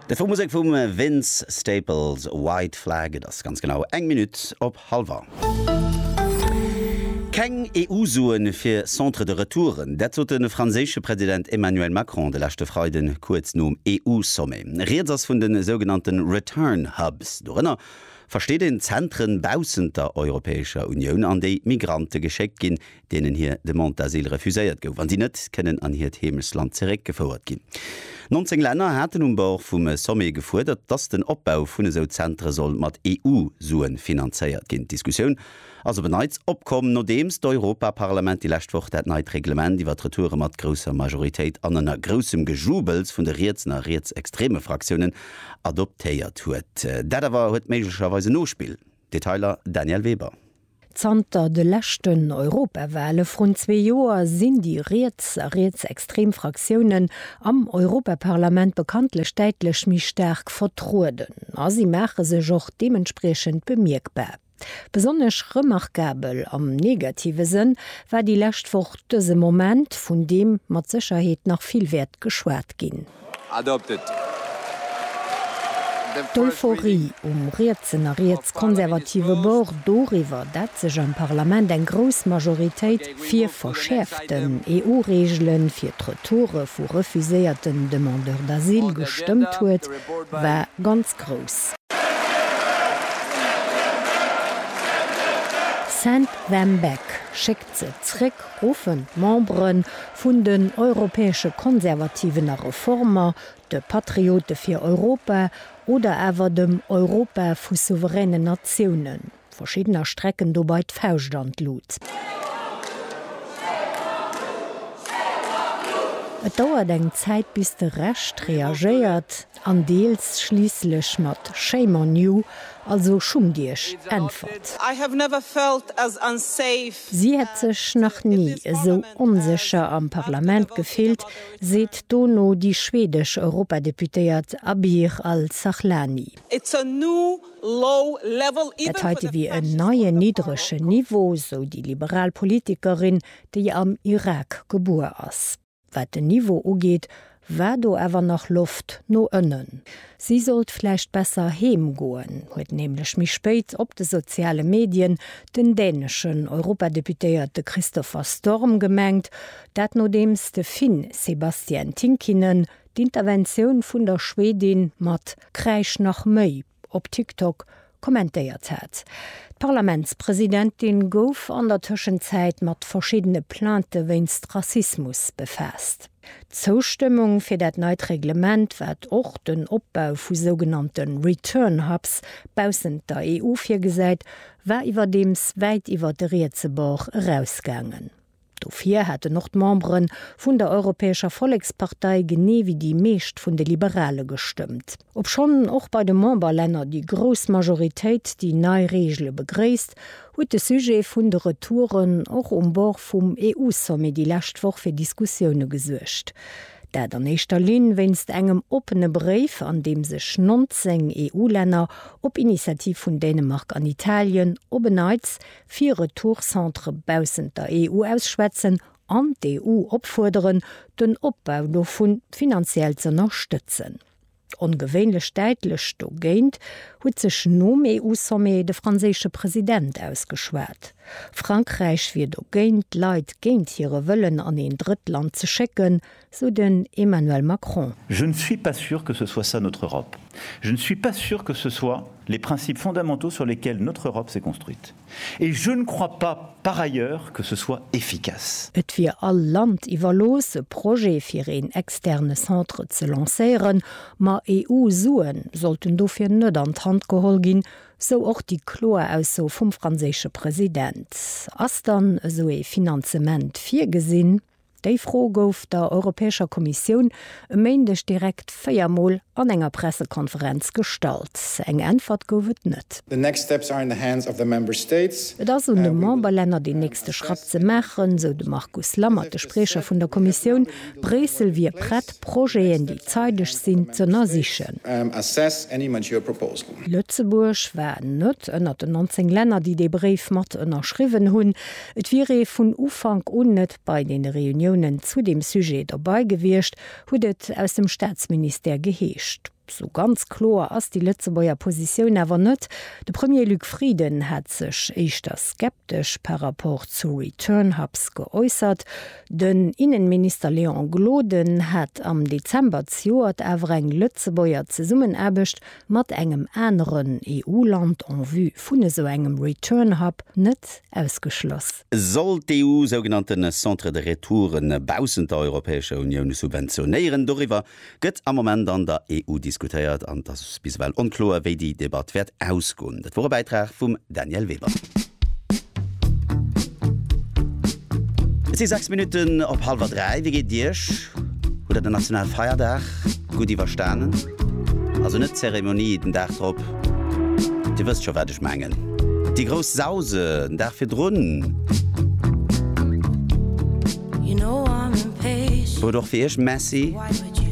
De Fou Musek vum Vince Staples, White Flag. Et ass ganz genau eng Minutt op hallwer. Keng EU-Sue fir Centres de retouren, dat sot de franséische President Emmanuel Macron de leschte Freiden, kuerz nom EU-Sommet. Rieds ass vun de sougenannte Return Hubs. Dorënner versteet een Zentren baussent der Europäescher Unioun, an déi Migrante geschéckt ginn, deenen hir Demande d'asile refuséiert gouf, an déi net kënnen an hiert Heemechtsland zeréck gefouert ginn. 19 Länner haten um Bord vum Sommet gefuerdert, dass den Opbau vun esou Zentere soll mat EU-Sue finanzéiert ginn. D'Diskussioun ass op en Neits opkomm, nodeems d'Europaparlament déi lescht Woch dat neit Reglement iwwer d'Retoure mat grousser Majoritéit an ënner groussem Gejubels vun de rietsen a rietsextreme Fraktiounen adoptéiert huet. Dat awer huet méiglecherweis en Nospill. Detailer Danièle Weber. Zanter de leschten Europawale vrun zwee Joer sinn déi riets a rietsextrem Fraktiounen am Europaparlament bekanntlech däitlech méi staark vertrueden a si maache sech och deementspriechend bemierkbar. Besonnesch remarkabel, am negative Sënn, war déi lescht Woch dëse Moment, vun deem mat Sécherheet nach vill wäert geschwat ginn. D'Euphorie um rietsen a rietskonservative Bord doriwwer, dat sech am Parlament eng grouss Majoritéit fir verschäerften EU-Reegele fir d'Retoure vu refuséierten Demandeurs d'asile gestëmmt huet, war ganz grouss. Saint Vambeck, Schéck Ze zréck ruffen d'Membere vun den Europäesche Konservativen a Reformer, de Patriote fir Europa oder awer dem Europa vu souveränen Natiounen. Verschiddener strecken dobei d'Fauscht an d'Lut. Et dauert eng Zäit bis de Rescht reagéiert. an deels schliisslech mat Shame on you, also schummt iech, äntwert. Si hätt sech nach ni esou onsécher am Parlament gefillt, seet dono déi schwedesch Europadeputéiert Abir Al-Sahlani. Dat heite wier en neien niddregen Niveau, sou déi liberal Politikerin, déi am Irak gebuer ass. Wat den Niveau ugeet, war do awer nach Loft no ënnen. Si sollt vläicht besser heem goen, huet nämlech méi spéit op de soziale Medien den däneschen Europadeputéierte Christopher Storm gemengt. Dat nodeems de Finn Sebastian Tinkinen d'Interventioun vun der Schwedin mat Kräisch nach méi! op TikTok kommentéiert hat. D'Parlamentspresidentin gouf an der Tëschenzäit mat verschiddene Plainte wéinst Rassismus befaasst. D'Zoustëmmung fir dat neit Reglement, wat och den Opbau vu sougenannte Return Hubs baussent der EU virgesäit, war iwwerdeems wäit iwwer de rietse Bord erausgaangen. Dofir hätten och d'Membere vun der Europäescher Vollekspartei, genee wéi déi meescht vun de Liberale gestëmmt. Obschonn och bei de Memberlänner déi grouss Majoritéit déi nei Reegele begréisst, huet de Sujet vun de Retouren och um Bord vum EU-Sommet déi lescht Woch fir Diskussioune gesuergt. Dat an éischter Linn wéinst engem oppene Bréif, an deem sech 19 EU-Länner, op Initiativ vun Dänemark an Italien, op en Neits fir Retourcentre baussent der EU ausschwätzen an d'EU opfuerderen, den Opbau dovu finanziell z'ënnerstëtzen. Ongewéinlech däitlech dogéint huet sech nom EU-Sommet de franséische President ausgeschwat. Frankräich wier dogéint, d'Leit géint hire Wëllen an een Drëttland ze schécken, sou den Emmanuel Macron. Je ne suis pas sûr que ce soit ça notre Europe. Je ne suis pas sûr que ce soit les principes fondamentaux sur lesquels notre Europe s'est construite. Et je ne crois pas, par ailleurs, que ce soit efficace. Et wier all Land iwwerlooss, e Projet fir een externe Centre ze lancéieren, ma EU-Sue sollten dofir net an d'Hand geholl ginn, sou och déi kloer Ausso vum franséische President. Ass dann esou ee Finanzement virgesinn? Déi Fro gouf der Europäescher Kommissioun e Méindeg direkt véier Mol an enger Pressekonferenz gestallt. Eng Äntwert gouf et net. Et ass un de Memberlänner deen nächste Schratt ze maachen, sou de Markus Lammert, de Spriecher vun der Kommissioun. Bréissel wier prett, Projeten, déi zeideg sinn, z'ënnersichen. Lëtzebuerg war net ënnert den 19 Länner, déi dee Bréif mat ënnerschriwwen hunn. Et wier ee vun Ufank un net bei deene Reuniounen zu deem Sujet dobei gewiescht, huet et aus dem Staatsministère geheescht. Sou ganz kloer ass déi Lëtzebuerger Positioun awer net. De Premier Luc Frieden hat sech éischter skeptesch par rapport zu Return Hubs geäussert. Den Innenminister Léon Gloden hat am Dezember zejoert awer eng Lëtzebuerger Zesummenaarbecht mat engem aneren EU-Land en vue vun esou engem Return Hub net ausgeschloss. Sollt d'EU sougenannte Centres de retour baussent der Europäescher Unioun subventionéieren? Doriwwer gëtt am Moment an der EU diskutéiert an et ass bis ewell onkloer, wéi déi Debatt wäert ausgoen. Dat wor e Bäitrag vum. Danièle Weber. Et si 6 Minutten op hallwer 3. Wéi geet et Iech? Hutt Der den Nationalfeierdag gutt iwwerstanen? Also net d'Zeremonie den Dag drop, Dir wësst scho wat ech mengen, déi grouss Sause den Dag virdrun. Huet och fir Iech Messi.